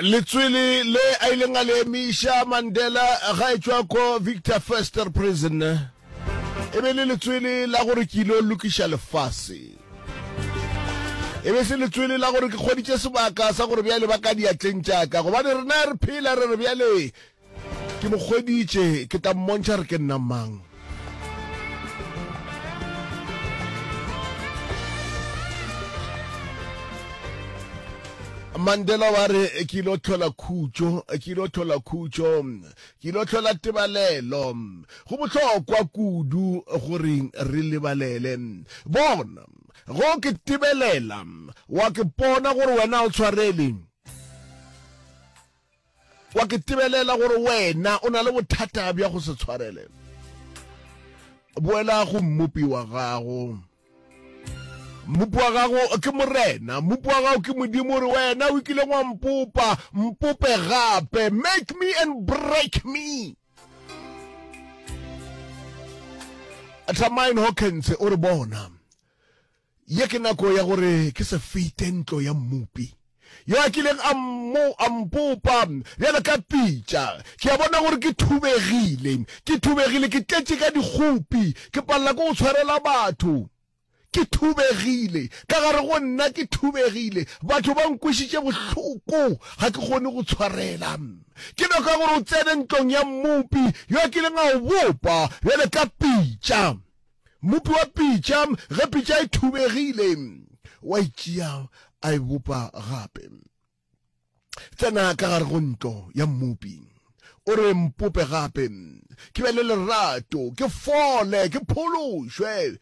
letswele le a ileng a le emiša mandela ga e tšwa ko victor fester prison e be le letswele la gore ke ile lokiša lefase e be se letswele la gore ke kgoditše sebaka sa gore bjale ba ka diatleng tšaka gobane rena re phela re re bjale ke mo kgweditše ke tla mmontšha re ke nna mang mandela wa re ke ile o tlhola khutšo ke ile o tlhola khutšo ke ile o tlhola tebalelo go bohlokwa kudu gore re lebalele bona go ke tebelela wa ke pona gore wena o tshwareleng Wa ke tebelela gore wena o na le bothata bja go se tshwarele. Boela go mmopi wa gago. Mmopi wa gago ke morena, mmopi wa gago ke modimo gore wena o ikileng wa mpopa, mpope gape, make me and break me. Tramaine Hawkins o re bona Ye ke nako ya gore ke se fete ntlo ya Mmopi yo a kileng a mmo, a mpopa bjalo ka pitša. Ke a bona gore ke thubegile, ke thubegile, ke tletše ka dikgopi, ke palela ke go tshwarela batho. Ke thubegile, ka gare go nna ke thubegile, batho ba nkwešiše bohloko, ga ke kgone go tshwarela. Ke nako ya gore o tsene ntlong ya Mmopi yo a kileng a go bopa bjalo ka pitša. Mmopi wa pitša, ge pitša e thubegile, wa e tšea a e bopa gape. Tsena ka gare go ntlo ya mmopi, o re mpope gape, ke be le lerato, ke fole, ke phološwe.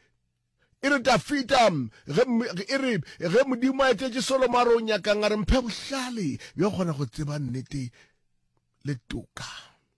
E re Dafita, e re ge Modimo a etetše Solomo a re o nyakang, a re mphe bohlale bja go kgona go tseba nnete le toka.